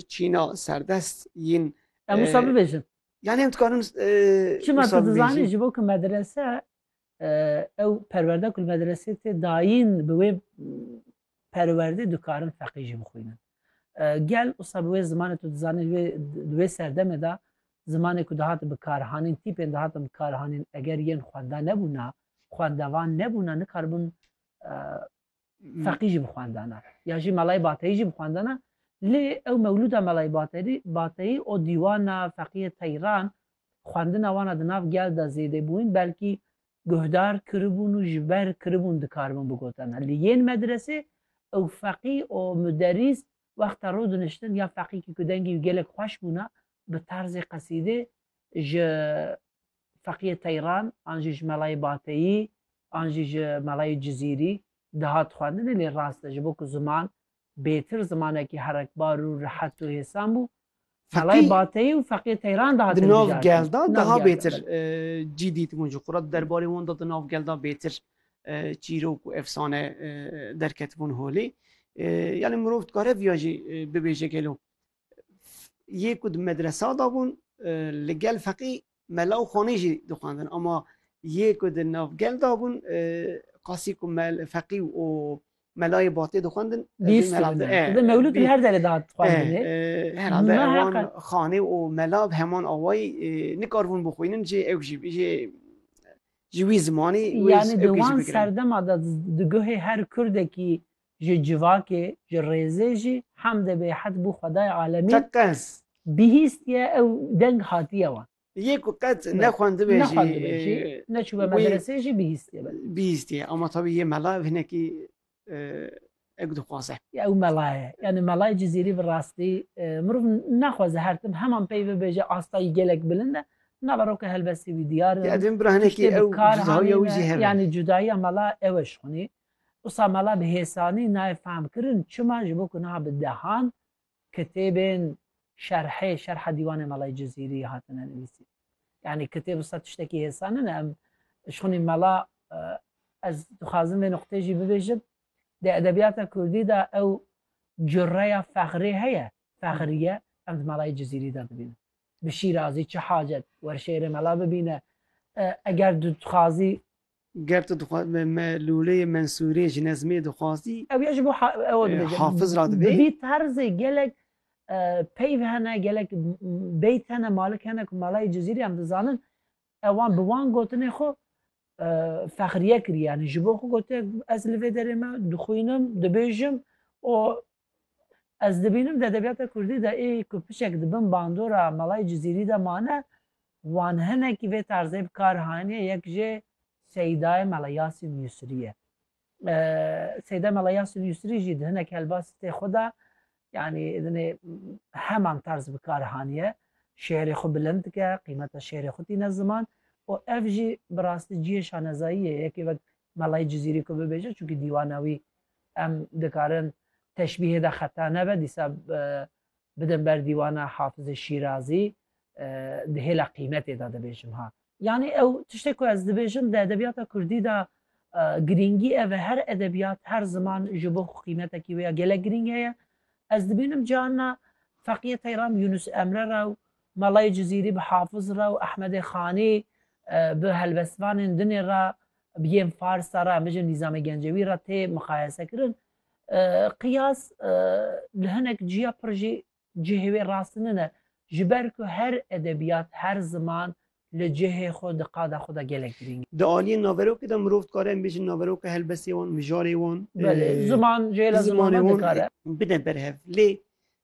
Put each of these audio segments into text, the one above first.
Çîna serdest yên. Em wisa bibêjin. Yani em dikarin Çima tu dizanî ji bo ku medrese ew perwerde ku medresê tê dayîn bi wê perwerdê dikarin feqî jî bixwînin. Gel wisa bi wê zimanê tu dizanî di wê serdemê de zimanê ku dihat bikarhanîn tîpên dihatin bikarhanîn eger yên xwenda nebûna xwendevan nebûna nikaribin feqî jî bi xwendana ya jî melayê bateyî jî bi xwendana lê ew mewlûda melayê baterî bateyî û dîwana feqîyê teyran xwendina wana di nav gel de zêdê bûn belkî guhdar kiribûn û ji ber kiribûn dikaribûn bigotena li yên medresê ew feqî û muderîs wexta rû diniştin ya feqîkî ku dengî wî gelek xweş bûna bi tarzê qesîdê ji Feqiyê Teyran an jî ji melayê Bateyî an jî ji melayê Cizîrî dihat xwendinê lê rast e ji bo ku ziman bêtir zimanekî herekbar û rihet û hêsan bû melayê Bateyî û Feqiyê Teyran dihatin bijartin. Di nav gel de daha bêtir cî dîtibûn ji xwe re di derbarê wan de di nav gel de bêtir çîrok û efsane derketibûn holê. Yanî mirov dikare viya jî bibêje gelo yê ku di medresa de bûn li gel feqî mela û xanî jî dixwendin ama yê ku di navgel de bûn qasî ku feqî û melayê batê dixwendin mewlûd her derê dat herhalde wan xanî û mela bi heman awayî nikarbûn bixwînin jê ew jî jê ji wî zimanî yanî di wan serdema de di guhê her kurdekî Ji civakê, ji rêzê jî hemdê bêhed bû xwedayê alemî. Te qens. Bihîstiye ew deng hatiye wan. Yê ku qet nexwendibe jî. Nexwendibe jî, neçûbe medresê jî bihîstiye be. Bihîstiye ama tabî yê mela ev hinekî ew dixwaze. Ya ew mela ye. Yanî melayê Cizîrî bi rastî mirov naxwaze her tim heman pey bibêje astayî gelek bilind e. Nava roke helbestî wî diyar e. Ya divin bira hinekî ew cudahiya wî jî hebe. Yanî cudahiya mela ew e ji xwinî. Wisa mala bi hêsanî nayê fehmkirin çima ji bo ku niha bi dehan kitêbên şerhê şerha dîwanê Melayê Cizîrî hatine nivîsîn. Yanî kitêb wisa tiştekî hêsan nene em ji xwinî mala ez dixwazim vê nuqteyê jî bibêjim di edebiyata kurdî de ew cureya fexrê heye fexriye em di Melayê Cizîrî de dibînin. Bi şîrazî çi hacet wer şêrê mela bibîne eger tu dixwazî Ger tu dixwazî me me lûleyê Mensûrê ji nezmê dixwazî. Ew ya ji bo ew dibêje. Hafiz ra dibê. Bi vî terzê gelek peyv hene, gelek beyt hene, malik hene ku malayê Cizîrê em dizanin ewan bi wan gotinê xwe fexriye kiriye. Yanî ji bo xwe gotiye ez li vê derê me dixwînim, dibêjim û Ez dibînim di edebiyata kurdî de ê ku piçek di bin bandora Melayê Cizîrî de mane wan hinekî vê tarzê bi kar haniye yek jê Seydaye Mela Yasîn Yusrî ye. Seyda Mela Yasîn Yusrî jî di hinek helbasitê xwe de yanî dinê heman tarz bi kar haniye şêrê xwe bilind dike qîmeta şêrê xwe tîne ziman û ev jî bi rastî cihê şanezayî ye yekê wek Melayî Cizîrî ku bibêje çunkî dîwana wî em dikarin teşbîhê de xeta nebe dîsa bidin ber dîwana Hafizê Şîrazî di hêla qîmetê de dibêjim ha. Yanî ew tiştê ku ez dibêjim di edebîyata kurdî de girîngî ev e her edebîyat her ziman ji bo xwe qîmetekî wê ya gelek girîng heye. Ez dibînim carna Feqîyê Teyram Yûnus Emre ra û Melayê Cizîrî bi Hafiz re û Ehmedê Xanî bi helbestvanên dinê re bi yên Farsa re em bijîn Nîzamê Gencewî re tê miqayese kirin. Qiyas li hinek ciya pir jî cihê wê rast nine. Ji ber ku her edebiyat, her ziman li cihê xwe di qada xwe de gelek girîng e. Di aliyên naverokê de mirov dikare em bijîn naveroka helbestê wan, mijarê wan, Belê, ziman, jêla zimana dikare. bine ber hev. Lê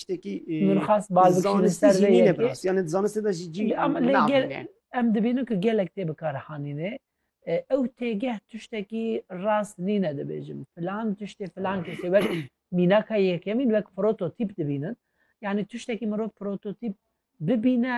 tiştekî zanistî jî nîne bi rastî yanê di zanistê de jî cî navîne. Em dibînin ku gelek tê bikarihanînê ew têgeh tiştekî rast nîne dibêjin filan tiştê filan kesê wek mînaka yekemîn wek prototîp dibînin yanî tiştekî mirov prototîp bibîne